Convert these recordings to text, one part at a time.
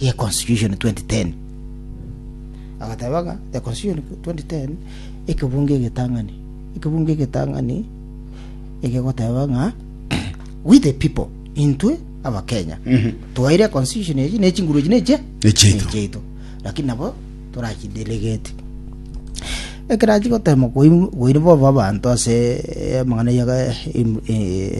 ye Constitution 2010. Agateba ng'a the Constitution 2010 ekebungo egetang'ani, ekebungo egetang'ani ekegoteba ng'a we the people, intwe abakenya twaire constitution echi ne chinguru echi neche Nechiaito. nechiaito lakini nabo torachidelegeti ekerachi gotema koiri bobe abanto ase eh, amang'ana ya eh, im- eh,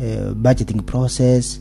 eh, budgeting process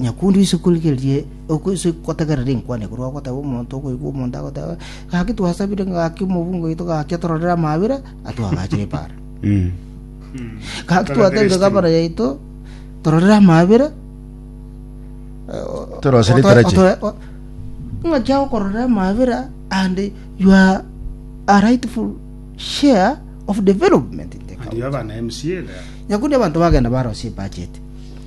Nyakunde oise korigereria oise gotegerera enkwana korwa ogoteba omonto okoigwa omonto agoteba gaki twasabire gaki omobunga oito gaki atororere amaabera atwagachire ebaara Mm. gaki twatebire gabana yaito tororere amaabera Torosere etarachi. ng'aki agokororera amaabera and you are a rightful share of development in the county. Aria abana MCA there. nyakundi abanto bagenda barosia ebacheti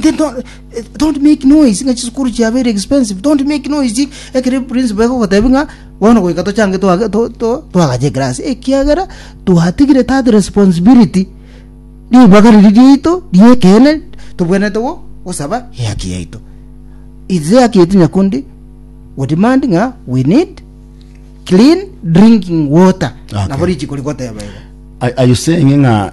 Then don't, eh, don't make noise ng'a chisukuru chia very expensive don't make noise ekere principal ekogotebi ng'a bono goika tochange twage- to- to- twagache egrasi ekiagera twatigire that responsibility ribaga riria riaito ri'ekeene tobwenerete go- gosaba ehaki yaito its ehaki yaito nyakundi we demand ng'a we need clean drinking water Okay. nabo richiko rigoteba igo Are, are you saying ng'a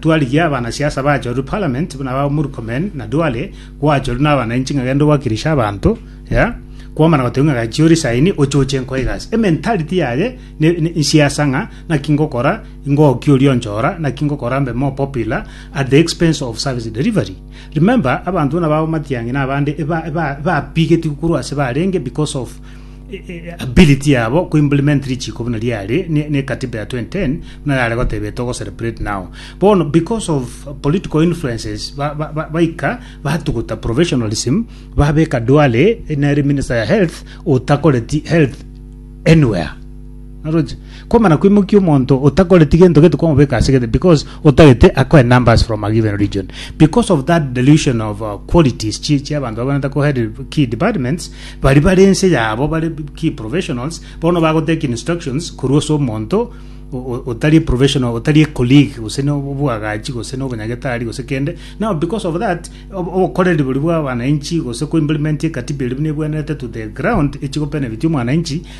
twarigia abanasiasa bachorwe Parliament, buna ba Murkomen na Duale, gwachorwe nabananchi ng'a genda obakirishe abanto, ya kwamana gotebia ng'a gachia orisaini ochoche enko egasi. Ementality yaye ne- ne- nsiasa ng'a naki ngokora ngoki oria onchora naki ngokora mbe more popular at the expense of service delivery. Remember abanto buna ba Omatiang'i na abande eba- eba- ebapigeti korwa ase barenge because of ability yabo ku implement richiko buna riare ne, ne katiba ya 2010 buna yare gotebia togo celebrate now bono because of political influences ba- ba- ba- baika batuguta professionalism babeka duale nere minister ya health otakoreti health anywhere Naroche? Komana koimokia omonto otakoreti gento gete kwamobeka ase gete because otagete akoe numbers from a given region. Because of that delusion of uh, qualities chi chi abanto bagonete ko head key departments bari bare ense yabo bare key professionals bono bagotake instructions korwa ase omonto o- o- otari professional otari a colleague gose no obwagachi gose no obonyagetari gose kende now because of that ob- obokoreri bori bwa wananchi gose ko implement ekatiba eri buna ebwenerete to the ground echigo benefit omwananchi